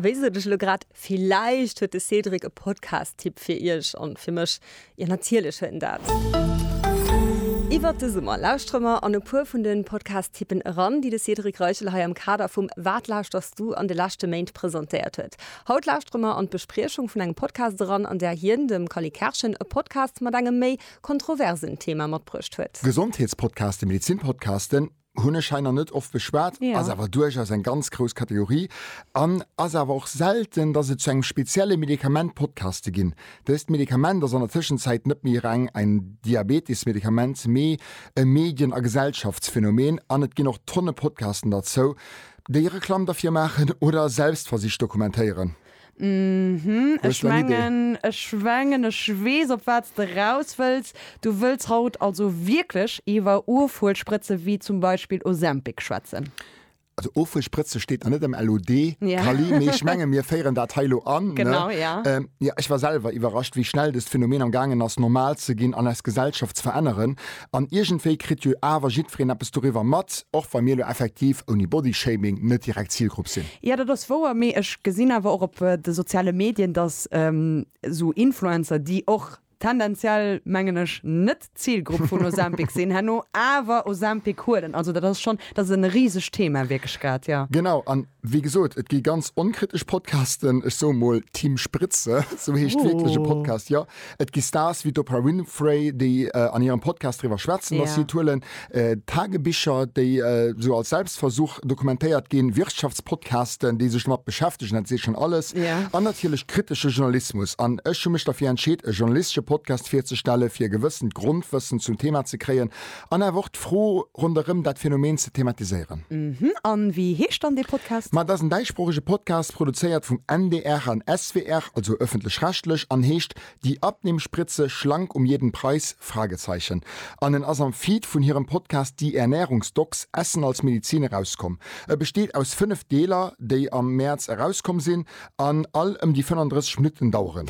Wéi sot ech elo grad, villäicht huet de Cédric e Podcast-Tipp fir iech an fir mech. Jo, natierlech huet en dat. Iwwert de Summer lauschtere mer an e puer vun de Podcast-Tippen eran, déi de Cédric Reichel hei am Kader vum Wat lauschters du an de leschte Méint presentéiert huet. Haut lauschtere mer an d'Bespriechung vun engem Podcast eran, an där hien, dem Cally Kerschen, e Podcast mat engem méi kontroversen Thema matbruecht huet. Gesondheetspodcasten, Medezin-Podcasten, Hunn ech hei nach net oft beschwat, ass awer duerchaus eng ganz grouss Kategorie an ass awer och selten, dass et zu engem spezielle Medikament Podcaste ginn. Dëst Medikament ass an der Tëschenzäit net méi reng en Diabetes-Medikament, mee e Medien a Gesellschaftsphänomen an et ginn och Tonne Podcasten derzou, déi Reklamm derfir maachen oder Selbstversicht dokumentéieren. Mhm, ech mengen, ech mengen ech weess op wat s de raus wëlls. Du wëlls haut also wierklech iwwer Ofhuelspritze wéi zum Beispill Ozempic schwätzen? Also Ofhuelspritze steet nach net am LOD, Kali, mee ech menge mir féieren dat hei elo an, ne? Jo, ech war selwer iwwerrascht, wéi schnell dëst Phänomen am gaangen ass normal ze ginn an eis Gesellschaft ze veränneren. An iergendwéi kritt jo awer jiddwereen eppes doriwwer mat, och wa mir elo effektiv, ouni Bodyshaming, net direkt Zilgrupp sinn. Jo, dat ass wouer, mee ech gesinn awer och op de soziale Medien, datt esou Influencer, déi och tendenziell, mengen ech, net d'Zilgrupp vun Ozempic sinn, herno awer Ozempic huelen. Also dat ass schonn, dat ass e risegt Thema wierklech grad, jo. Genau. An Wéi gesot, et gi ganz onkritesch Podcasten, ech soe mol Team Spritze, sou heescht wierklech e Podcast, jo. Et gi Stars wéi d'Oprah Winfrey, déi an hirem Podcast driwwer schwätzen, datt si et huelen, Tagebicher, déi sou als Selbstversuch dokumentéiert ginn, Wirtschaftspodcasten, déi sech domat beschäftegen, dat seet schonn alles, an natierlech kritesche Journalismus. An ech hu mech derfir entscheet, e journalistesche Podcast virzestellen, fir e gewëssent Grondwëssen zum Thema ze kréien, An awer och d'Fro ronderëm dat Phänomen ze thematiséieren. Uhmm, an wéi heescht dann dee Podcast? Ma et ass en däischsproochege Podcast, produzéiert vum NDR an SWR, also ëffentlech-rechtlech, an heescht Die Abnehmspritze, Schlank um jeden Preis? Fragezeichen. An en ass am Feed vun hirem Podcast Die Ernährungsdocs, Essen als Medizin, erauskomm. E besteet aus 5 Deeler, déi am Mäerz erauskomm sinn an all ëm déi 35 Minutten daueren.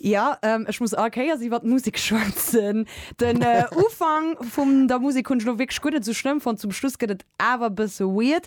Jo, ech muss all Kéiers iwwert d'Musek schwätzen. Den Ufank vum der Musek hunn ech elo wierklech guer net esou schlëmm fonnt. Zum Schluss gëtt et awer e bësse weird,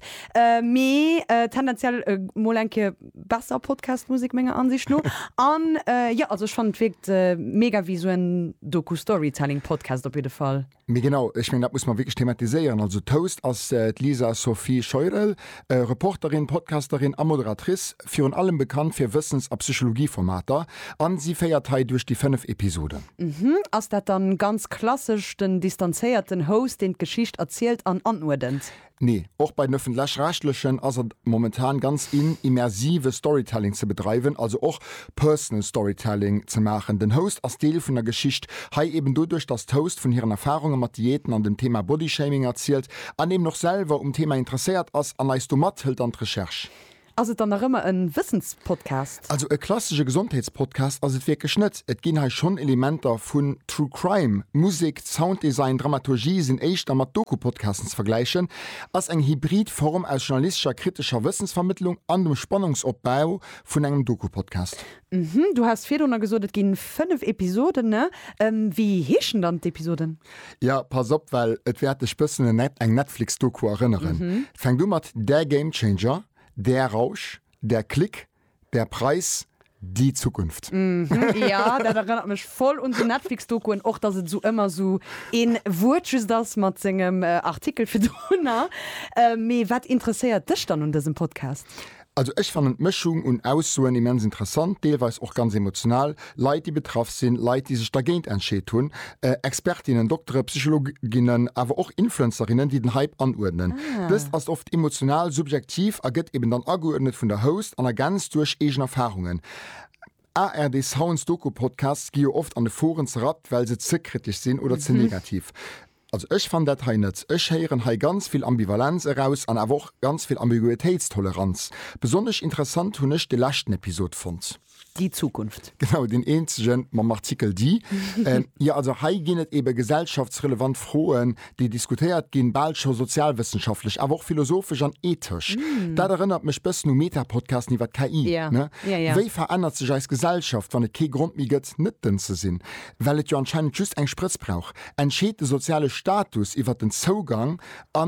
mee tendenziell mol eng Kéier besser Podcast-Musek menger Ansicht no. An jo, also ech fannen et wierkt mega wéi esou en Doku-Storytelling-Podcast op jidde Fall. Mee genau, ech mengen, dat muss mer wierklech thematiséieren. Also d'Host ass d'Lisa Sophie Scheurel, Reporterin, Podcasterin a Moderatrice, virun allem bekannt fir Wëssens a Psychologie-Formater. A si féiert hei duerch déi fënnef Episoden. Uhmm. Ass dat dann ganz klassesch den distanzéierten Host, deen d'Geschicht erzielt an anuerdent? Nee, och bei den Öffentlech-Rechtlechen ass et momentan ganz in, immersive Storytelling ze bedreiwen, also och Personal Storytelling ze maachen. Den Host ass Deel vun der Geschicht, hei eben doduerch, dass d'Host vun hiren Erfahrunge mat Diäten an dem Thema Bodyshaming erzielt an eben och selwer um Thema interesséiert ass an eis domat hëlt an d'Recherche. Ass et dann nach ëmmer en Wëssenspodcast? Also e klassesche Gesondheetspodcast ass et wierklech net. Et ginn hei schonn Elementer vun True Crime. Musek, Sounddesign, Dramaturgie sinn éischter mat Doku-Podcasten ze vergläichen. Ass eng hybrid Form aus journalistescher kritescher Wëssensvermittlung an dem Spannungsopbau vun engem Doku-Podcast. Du has virdrunner gesot, et ginn 5 Episoden. Wéi heeschen dann d'Episoden? Ja, pass op, well et wäert dech bëssen un eng Netflix-Doku erënneren. Fänkt u mat Der Gamechanger, Der Rausch, Der Klick, Der Preis, Die Zukunft. Ja, dat erënnert mech voll un sou Netflix-Dokuen, och datt et esou ëmmer esou een Wuert just ass mat sengem Artikel virdrunner. Mee wat interesséiert dech dann un dësem Podcast? Also ech fannen d'Mëschung un Aussoen immens interessant, deelweis och ganz emotional, Leit déi betraff sinn, Leit déi sech dergéint entscheet hunn, Expertinnen, Doktere, Psychologinnen, awer och Influencerinnen déi den Hype anuerdnen. Dëst ass oft emotional, subjektiv a gëtt eben dann ageuerdnet vun der Host an ergänzt duerch eegen Erfarungen. ARD Sounds Doku-Podcasts gi jo oft an de Foren zerrappt well se ze kritesch sinn oder ze negativ. Also ech fannen dat hei net. Ech héieren hei ganz vill Ambivalenz eraus an awer och ganz vill Ambiguitéitstoleranz. Besonnesch interessant hunn ech de leschten Episod fonnt. Déi Zukunft. Genau, deen eenzege mam Artikel Déi. Jo, also hei ginn et eebe gesellschaftsrelevant Froen, déi diskutéiert ginn, bal scho sozialwëssenschaftlech, awer och philosophesch an ethesch. Dat erënnert mech bëssen u Meta-Podcasten iwwer KI. Wéi verännert sech eis Gesellschaft, wann et kee Grond méi gëtt, net dënn ze sinn? well et jo anscheinend just eng Sprëtz brauch, entscheet de soziale Status iwwer den Zougang a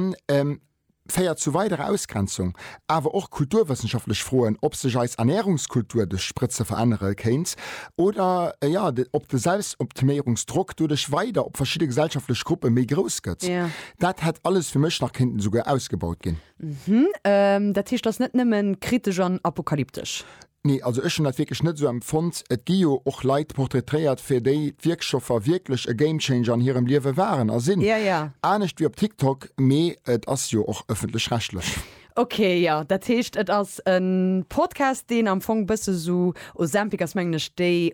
féiert zu weiderer Ausgrenzung. Awer och kulturwëssenschaftlech Froen, ob sech eis Ernärungskultur duerch Sprëtze verännere kéint oder ob de Selbstoptiméierungsdrock doduerch weider op verschidde gesellschaftlech Gruppe méi grouss gëtt. Dat hätt alles fir mech nach kéinten esouguer ausgebaut ginn. Dat heescht, ass net nëmmen kritesch an apokalyptesch. Nee, also ech hunn dat wierklech net esou empfonnt. Et gi jo och Leit portraitréiert, fir déi d'Wierkstoffer wierklech e Gamechanger an hirem Liewe waren a sinn. Ja, ja. Anescht wéi op TikTok, mee et ass jo och ëffentlech-rechtlech. Ok, jo. Dat heescht, et ass e Podcast, deen am Fong bësse sou, Ozempic ass mengen ech déi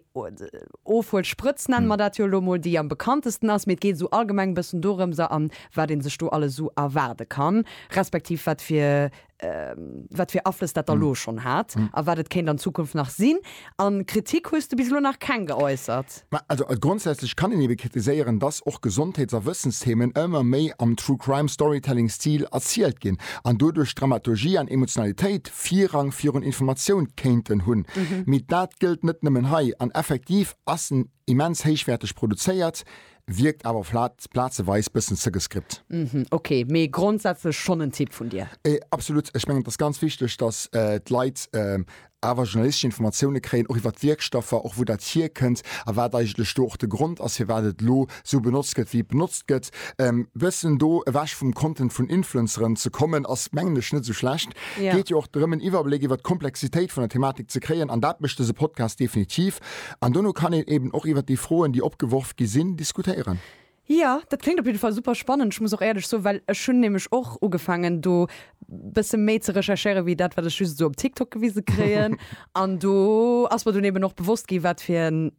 Ofhuelsprëtz, nenne mer dat jo elo mol, déi am bekanntesten ass, mee et geet esou allgemeng e bëssen dorëms a wat ee sech do alles esou erwaarde kann, respektiv wat fir wat fir Aflëss dat da lo schonn hat a wat et kéint an Zukunft nach sinn. A Kritik hues du bis elo nach keng geäussert? Ma also grondsätzlech kann een ebe kritiséieren, dass och Gesondheets a Wëssensthemen ëmmer méi am True-Crime-Storytelling-Stil erzielt ginn an doduerch Dramaturgie an Emotionalitéit Virrang virun Informatioun kéinten hunn. Mee dat gëllt net nëmmen hei an effektiv ass en Immens héichwäerteg produzéiert, wierkt awer flat, plazeweis bëssen ze gescript. Mhm, ok, mee grondsätzlech schonn en Tipp vun dir? Absolut, ech mengen et ass ganz wichteg, datt d'Leit awer journalistesch Informatioune kréien, och iwwer d'Wierkstoffer, och wou dat hierkënnt a wat eigentlech do och de Grond ass, firwat et elo esou benotzt gëtt, wéi et benotzt gëtt. E bëssen do ewech vum Content vun Influenceren ze kommen, ass mengen ech net esou schlecht. Geet jo och drëm, en Iwwerbléck iwwer d'Komplexitéit vun der Thematik ze kréien an dat mécht dëse Podcast definitiv. An dono kann een eben och iwwert déi Froen, déi opgeworf gi sinn, diskutéieren. Jo, dat kléngt op jidde Fall super spannend. Ech muss och éierlech soen, well ech hunn nämlech och ugefaangen, do bësse méi ze recherchéieren, wéi dat, wat ech just esou op TikTok gewise kréien. An do ass mer dunn eben och bewosst gi wat fir en,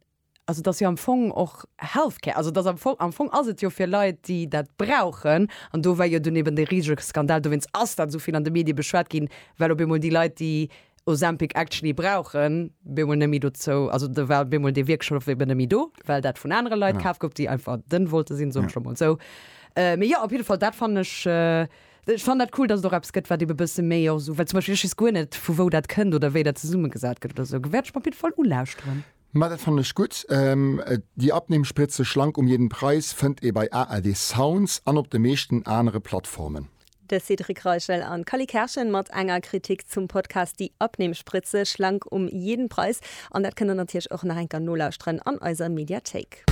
also et ass jo am Fong och Healthcare, also et ass am Fong, am Fong ass et jo fir Leit, déi dat brauchen. An do war jo dunn eben dee risege Skandal, dowéinst ass dat esou vill an de Medie beschwat ginn, well op eemol déi Leit, déi Ozempic actually brauchen, bemol nemmi dozou, also de war bemol dee Wierkschlof eben nemmi do, well dat vun anere Leit kaf gouf, déi einfach den wollte sinn, soen ech lo mol esou. Mee jo, op jidde Fall, dat fannen ech, ech fannen dat cool, dass et och eppes gëtt, wat ebe bësse méi och esou, well zum Beispill ech weess guer net, vu wou dat kënnt oder wéi dat zesummegesat gëtt oder esou, wäert ech mer op jidde Fall ulauschteren. Ma dat fannen ech gutt. Déi Abnehmspritze schlank um jeden Preis fënnt ee bei ARD Sounds an op de meeschten anere Plattformen. De Cédric Reichel an d'Cally Kerschen mat enger Kritik zum Podcast Die Abnehmspritze schlank um jeden Preis. An dat kënnt der natierlech och nach eng Kéier nolauschteren an eiser Mediathéik.